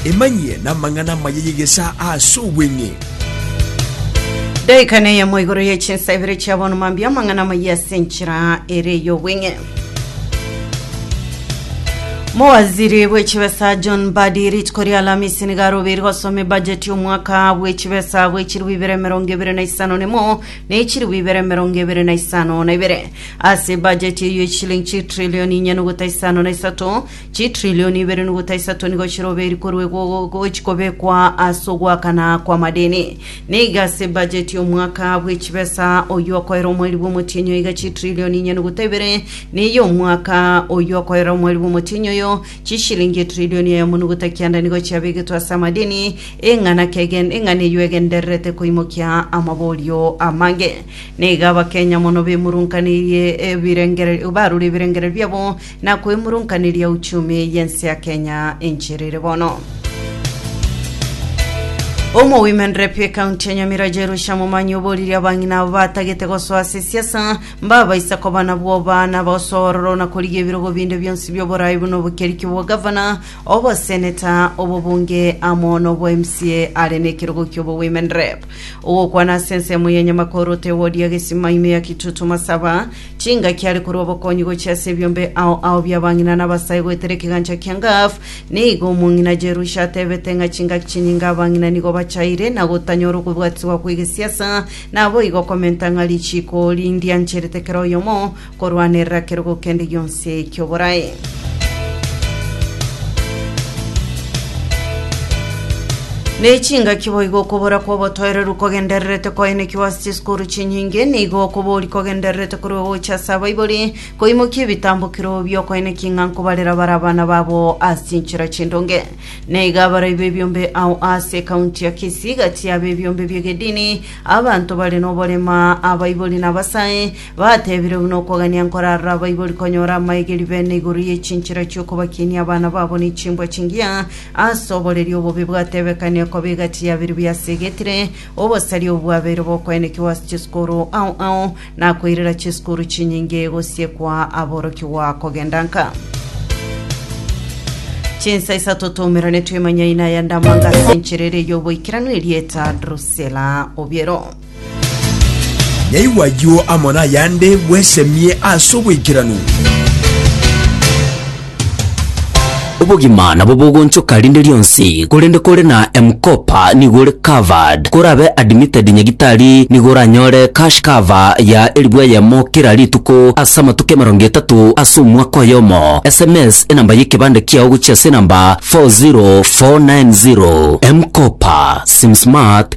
Emanyie namang'ana amaya y'egesaa ase obweng'e. Daika neyemo igoro ye chinsa ibere chia bono mambia amang'ana amaya ase enchera ere y'obweng'e. Mowaziri bw'echibesa John Mbadi rituko ria Alamisi nigo arobeire gosoma ebajeti y'omwaka bw'echibesa bw'echiribu ibere emerongo ebere na isano nemo na echiribu ibere emerongo ebere na isano na ibere. Ase ebajeti eyio y'echilingi chitrilioni inye nogota isano na isato Chitrilioni ibere nogota isato nigo chiroberi korwa igo gochi kobekwa ase ogoakana kw'amadeni. Niga ase bajeti y'omwaka bw'echibesa oyio okoera omweri bw'omotienyi oyo iga chitrilioni inye nogota ibere neye omwaka oyio okoera omweri bw'omotienyi oyo chishilingi etrilioni eyemo nogota kianda nigo chiabegetwe ase amadeni eng'ana kegen eng'ana eyio egendererete koimokia amaborio amange. Niga Abakenya mono bemurunkaneirie ebirengererio barure ebirengererio biabo na koimurunkaneria uchumi y'ense ya Kenya encherere bono. Omo Women Rep ekaunti ya Nyamira Jerusha Momanyi oboririe abang'ina abo batagete gosoa ase esiasa mbabaisa koba na bwoba na bosoororo na korigia ebirogo binde bionsi bi'oboraai buna obokeriki bwa gavana, oboseneta, obobunge amo na obwa MCA are nekerogo ki'obo Women Rep. Ogokwana ase ensemo ya Nyamakoro Tewodia Gesima ime ya Kitutu Masaba Chingaki are korwa obokonyi gochia ase ebiombe ao ao bi'abang'ina na abasae goetera ekegancha kia Gath. Nigo omong'ina Jerusha atebete ng'a chingaki chinyinge abang'ina nigo bachaire na gotanyora okobwatiswa kw'egesiasa, naboigo komenta ng'a richiiko ri'ndiancherete kera oyomo korwanerera kerogo kende gionsi ki'oborae. Nechingaki boigo okobora kw'obotoereru kogendererete koenekiwa ase chisukuru chinyinge, nigo okobori kogendererete korwa egocha ase abaibori, koimokia ebitambokero bi'okoenekia ng'a nkobarera bare abana babo ase chinchera chindonge. Naiga abarai b'ebiombe ao ase ekaunti ya Kisii, gati y'ab'ebiombe bi'egedini, abanto bare noborema, abaibori na abasae, Batebire buna okogania nkorarora abaibori konyora amaegeri bene igoro ye chinchera chi'okobakinia abana babo ne chimbwa chingiya, ase oboreri obobe bwatebekanire koba egati yabere biasegetire, obosari obo bwabeire bokoenekigwa ase chisukuru ao ao, na koirera chisukuru chinyinge gosiekwa aborokigwa kogenda nka. Chinsa isato twaumerane twemanyaine aya ndamanga ase enchera ere y'oboikeranu erieta Drusela Obiero. Nyaigwe ayio amo nayande bwesemie as'oboikeranu. Obogima nabo bogonchoka rinde rionsi, korende kore na M-Kopa nigo ore covered. Korabe admitted nyagitari nigo oranyore cash cover ya elfu eyemo kera rituko ase amatuko emerongo etato ase omwaka oyomo. Sms enamba y'ekebande kiao gochia ase enamba 40490. M-Kopa, sim smart,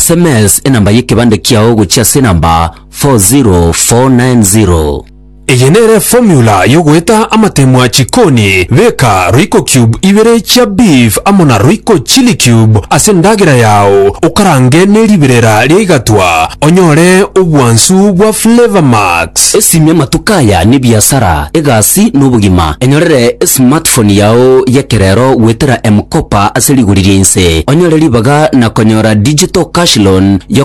Sms enamba y'ekebande kiao gochia ase enamba 40490. Eye nere formula yogoeta amatemwa chikoni, beka royco cube ibere chia beef amo na royco chilli cube ase endagera yao okarange neribirera ria igatwa onyore obwansu bwa flavour max. Esimia matuko aya nebiasara. egasi na obogima. Enyorere esmartphone yao y'ekerero goetera M-Kopa ase rigori ria inse, onyore ribaga na konyora digital cash loan ya